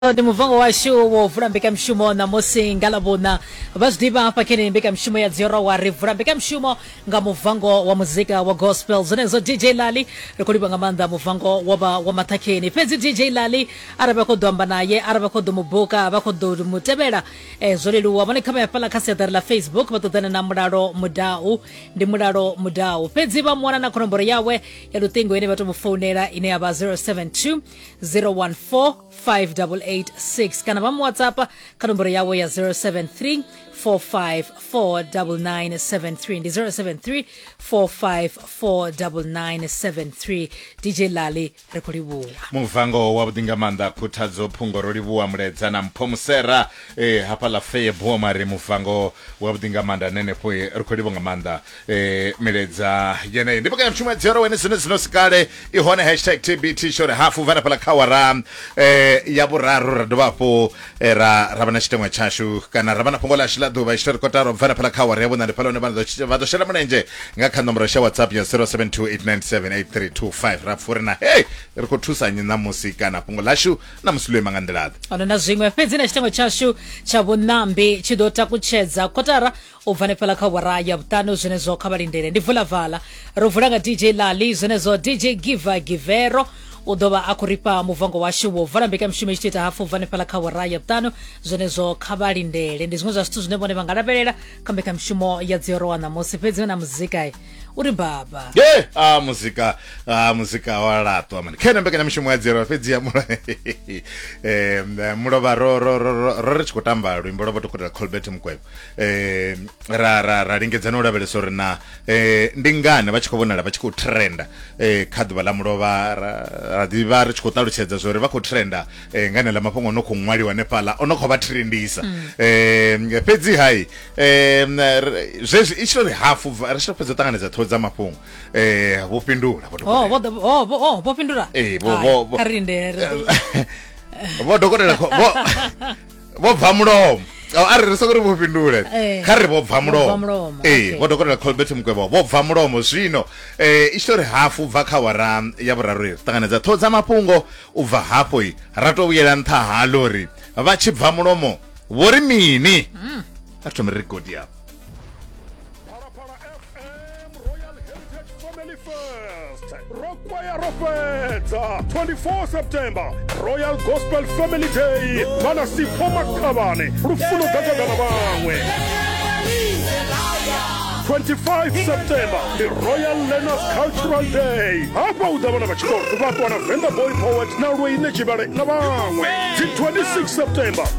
ndi muvango washu wo vula mbekanyamushumo ṋamusi nga ḽavhuṋa vha zwi ḓivha hafha khe neyi mbekanyamushumo ya dziorowa ri vula mbekanyamushumo nga muvango wa muzika wa gospel zwenezwo dj lali ri khou livha nga maanḓa muvango wo vha wa maṱhakheni fhedzi dj lali arali vha khou ḓo amba naye arali vha khou ḓo mu buka vha khou ḓo mu tevhela eh, zwo leluwa vhone kha vha ya fhaḽa kha siaṱari ḽa facebook vha ṱoḓana na mulalo mudau ndi mulalo mudau fhedzi vha mu wana na khonomboro yawe ya luṱingo ine vha to mu founela ine ya vha 072 014 5886 kana vha mu whatsapp kha nomboro yavho ya 073 4549973 ndi 073 4549973 dj lali ri khou livhuwa muvango wa vhuḓi nga maanḓa khuthadzo phungo ro livhuwa muledza na mpho musera eh, hafha la feye boma ri muvango wa vhuḓi nga maanḓa nenefho eh, ri khou livhuwa nga maanḓa eh milaedza yeneyo ndi pakati mshuma dzero wene zino zino sikale ihone hashtag tbt shore hafu vana pala khawara eh ya vhuraru ra dovha hafhu eh, ra ra vha na tshiteṅwa tshashu kana ra vha na fhungo ḽashu ḽa ḓuvha tshitori kotaro vana pala khawara ya vhuṋa ndi phala hune vha ḓo vha ḓo shela mulenzhe nga kha nomboro ya whatsapp ya 0728978325 ra pfha uri na hey ri khou thusa nyi ṋamusi kana fhungo ḽashu ṋamusi ḽo ima nga nḓila-ḓe ono na zwiṅwe fhedzi na tshiteṅwa tshashu tsha vhuṋambi tshi ḓo takutshedza kotara u bva hanefhaḽa kha awara ya vhuṱanu zwenezwo kha vha lindele ndi vulavala ro vula nga dj lali zwenezwo dj giva givero u ḓo vha a khou rifha muvango washu wo vala mbekanyamushumo i tshi ita hafu bva hanefhaḽa kha awara ya vhuṱanu zwenezwo kha vha lindele ndi zwiṅwe zwa zwithu zwine vhone vha nga lavhelela kha mbekanyamushumo ya dziorowa ṋamusi fhedzi na muzika uri baba ye a muzika a muzika wa laṱwa mani khena mbekanyamushumo ya dziorowa fhedzi ya mula um mulovha ro ro ro ro ro ri tshi khou tamba luimbo lwa vho dokotela colbert mukwevho eh ra ra ra lingedza no lavhelesa uri na eh ndi ngani vha tshi khou vhonala vha tshi khou trenda eh kha ḓuvha ḽa mulovha ra ra ḓivha ri tshi khou ṱalutshedza zwo ri vha khou trenda eh ngani ḽa mafhungo no khou ṅwaliwa hanefhaḽa ono khou vha trendisa eh fhedzi hai eh zwezwi i tshi ri hafu ri tshi fhedza ṱanganedza ṱhoho dza mafhungo eh vho fhindula vho oh vho oh vho oh, vho fhindula eh vho vho kha rindele vho dokotela vho vho bva mulomo oh, a ri sokori vho fhindule eh, kha ri vho bva mulomo ee vho dokotela colbert mukwevho vho bva mulomo zwino um eh, itshito ri hafu bva kha wara ya vhuraru ri ṱanganedza ṱhoho dza mafhungo u bva hafho i ra to vhuyela nṱha ha lori vha tshi bva mulomo vho ri mini hmm. a thome ri godi yapo Fedza 24 September Royal Gospel Family Day vana Sipho Makhabane lufuno gagagana vhaṅwe 25 september ndi royal learners cultural day hafha u ḓa vhana vha tshikolo vha ṱwana venda boy poet na lweine tshivhale na vhaṅwe dzi 26 september